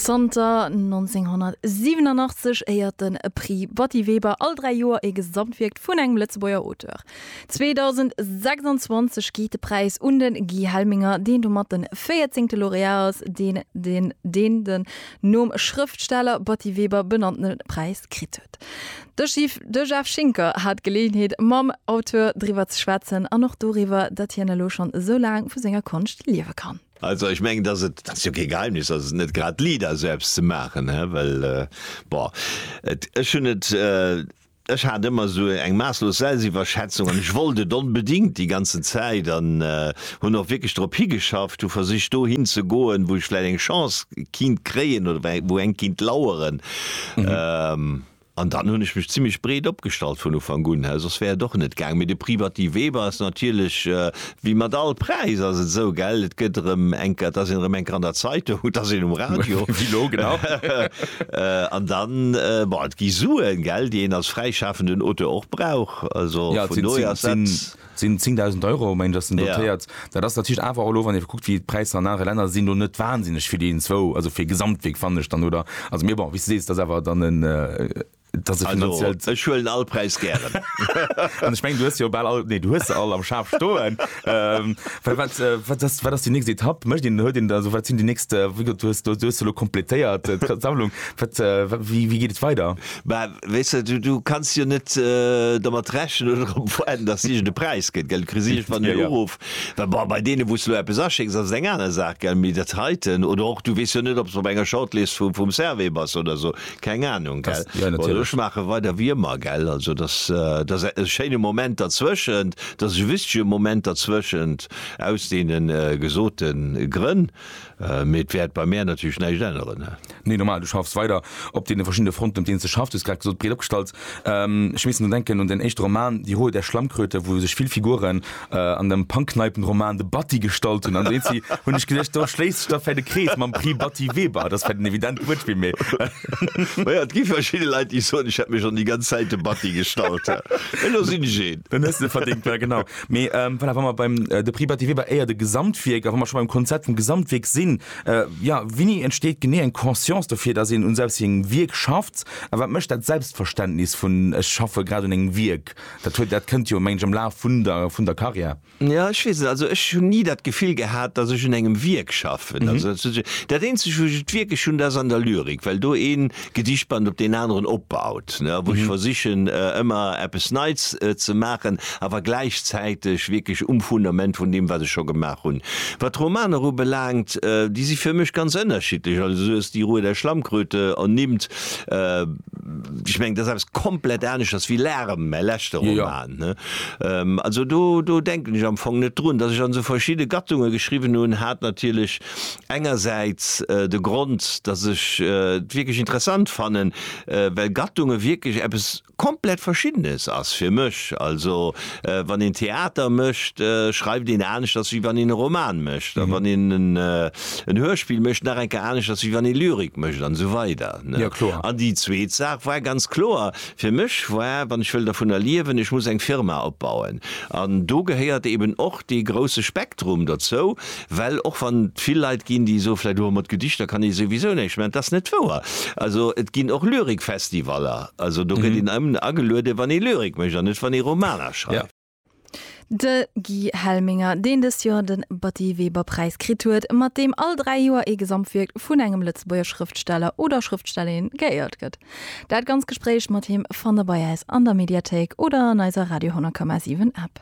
Zanter 1987 éiert den Prix Batty Weber all dräi Joer ee Gesamtwierk vun engem Lëtzebuerger Auteur. 2026 geet de Präis un de Guy Helminger, deen domat de véierzéngte Laureat ass, deen den nom Schrëftsteller Batty Weber benannte Präis kritt huet. De Jeff Schinker hat d'Geleeënheet mam Auteur driwwer ze schwätzen an och doriwwer, datt hien elo schonn esou laang vu senger Konscht liewe kann. Also ech mengen, datt et, dat ass jo kee Geheimnis, datt et net grad liit ass esou eppes ze maachen, hä, well bon et, ech hunn et, ech hat ëmmer esou eng maasslos Selbstiwwerschätzung an ech wollt et onbedingt déi ganzen Zäit an, hunn och wierklech drop higeschafft, hu versicht do hin ze goen, wou ech vläit eng Chance kinnt kréien oder wei wou eng kinnt laueren. Ähm, an dann hunn ech mech zimmlech breet opgestallt vun Ufank un, he soss wär et och net gaang. Mee de Prix Batty Weber ass natierlech, äh, wéi mat all Präis ass et esou, gell, et gëtt erëm eng Ke et ass een erëm eng Ke an der Zeitung, et ass een um Radio, Wéi elo, genau. äh, an dann, äh, bon, et gi Suen, gell, déi een als fräischafenden Auteur och brauch, also Ja, et vun sinn, dohier sinn, ass sinn, dat. sinn 10.000 Euro mengen ech ass den dotéiert. Yeah. Dat ass natierlech awer och elo, wann ee kuckt wéi d'Präisser an anere Länner sinn, elo net wahnsinneg fir déi zwou, also fir Gesamtwierk fannen ech dann oder, also mee bon wéi s de sees, dat ass awer dann en, dat ass e finanziellt. Also ech huelen all Präis gären. An ech mengen du hues se jo bal all, nee du hues se all am Schaf stoen. Well wat, wat ass, wat ass déi nächst Etapp? Mécht een, huet een, also wat sinn déi nächst, wéi gesot du hues, du hues se elo kompletéiert d'Sammlung, wat, wéi, wéi geet et weider? weess de, du, du kanns jo net domat rechnen oder drop waarden, dass et iergend e Präis gëtt, gell? Du kriss iergendwann den Uruff, well bon, bei deene wou s du elo eppes aschécks, ass et eng aner Saach, gell? Mee dat heiten, oder och, du weess jo net, ob s op enger Shortlist vu, vum Servais bass oder esou, keng Anung, gell? Oder ech maache weider wéi ëmmer, gell? Also dass, dass e schéine Moment derzwëschent, dass e wichtige Moment derzwëschent, aus deene gesote Grënn. Mee et wäert bei mär natierlech näischt änneren. Nee, normal, du schaffs weider op deene verschiddene Fronten, op deenen s de schaffs. Du hues grad gesot, breet opgestallt. Ech miisst drun denken un den éischte Roman Die Hohe der Schlammkröte, wou sech vill Figuren an dem Pangkneipenroman de Batty gestalt hunn. An do si, hunn ech geduecht, do schléisst sech da vläit e Krees mam Prix Batty Weber. Dat ass vläit en evident Wuertspill, mee. Ma jo, et gi verschidde Leit, déi soen, ech hätt mech schonn déi ganz Zäit de Batty gestalt. Elo sinn ech een. Dann hues de verdéngt, ja genau. Mee voilà, wa mer beim de Prix Battivier war éier de Gesamtwierk, a wa mer scho beim Konzept vum Gesamtwierk sinn, jo, wéini entsteet genee eng Conscience dofir, datt een un selbst sengem Wierk schafft? A wat mécht dat Selbstverständnis vun ech schaffe grad un engem Wierk? Dat huet, dat kënnt jo, mengen ech, am Laf vun der, vun der Karriär. Jo, ech weess net. Also ech hunn ni dat Gefill gehat, datt ech un engem Wierk schaffen. Also dat Eenzegt, wou ech et wierklech hunn, dat ass an der Lyrik, well do een, Gedichtband op deen aneren opbaut, ne, wou ech versichen ëmmer eppes Neits ze maachen, awer gläichzäiteg wierklech um Fundament vun deem, wat ech scho gemaach hunn. Wat d'Romaner ubelaangt, déi si fir mech ganz ënnerschiddlech. Also sou ass déi Ruhe der Schlammkröte ernimmt, ech mengen, dat ass eppes komplett aneschters wéi Lärm, mäi leschte Roman, ne. Also do, do denken ech am Fong net drun, datt ech an esou verschidde Gattunge geschriwwen hunn, hat natierlech Engersäits de Grond, datt ech et wierklech interessant fannen, well Gattunge wierklech eppes komplett Verschiddenes ass fir mech. Also wann een Theater mécht, schreift een aneschters, wéi wann een e Roman mécht. A wann een en Hörspill mécht, nach eng Kéier aneschters, wéi wann ee Lyrik mécht an esou weider. An déi zweet Saach war ganz kloer fir mech war, wann ech wëll dervunner liewen, ech muss eng Firma opbauen. An do gehéiert eeben och dee grousse Spektrum derzou, Well och wann et vill Leit ginn, déi soen vläicht, oh mat Gedichter kann ee souwisou näischt maachen, et ass net wouer. Also et ginn och Lyrikfestivaller, also do gëtt een ëmn agelueden, wann ee Lyrik mécht an net wann ee Romaner schreift. De Guy Helminger, deen dëst Joer de Batty-Weber-Präis kritt huet, mat deem all dräi Joer ee Gesamtwierk vun engem Lëtzebuerger Schrëftsteller oder Schrëftstellerin geéiert gëtt. Dat ganz Gespréich mat him fannt Der bei äis an der Mediathéik oder an eiser Radio 10,7 App.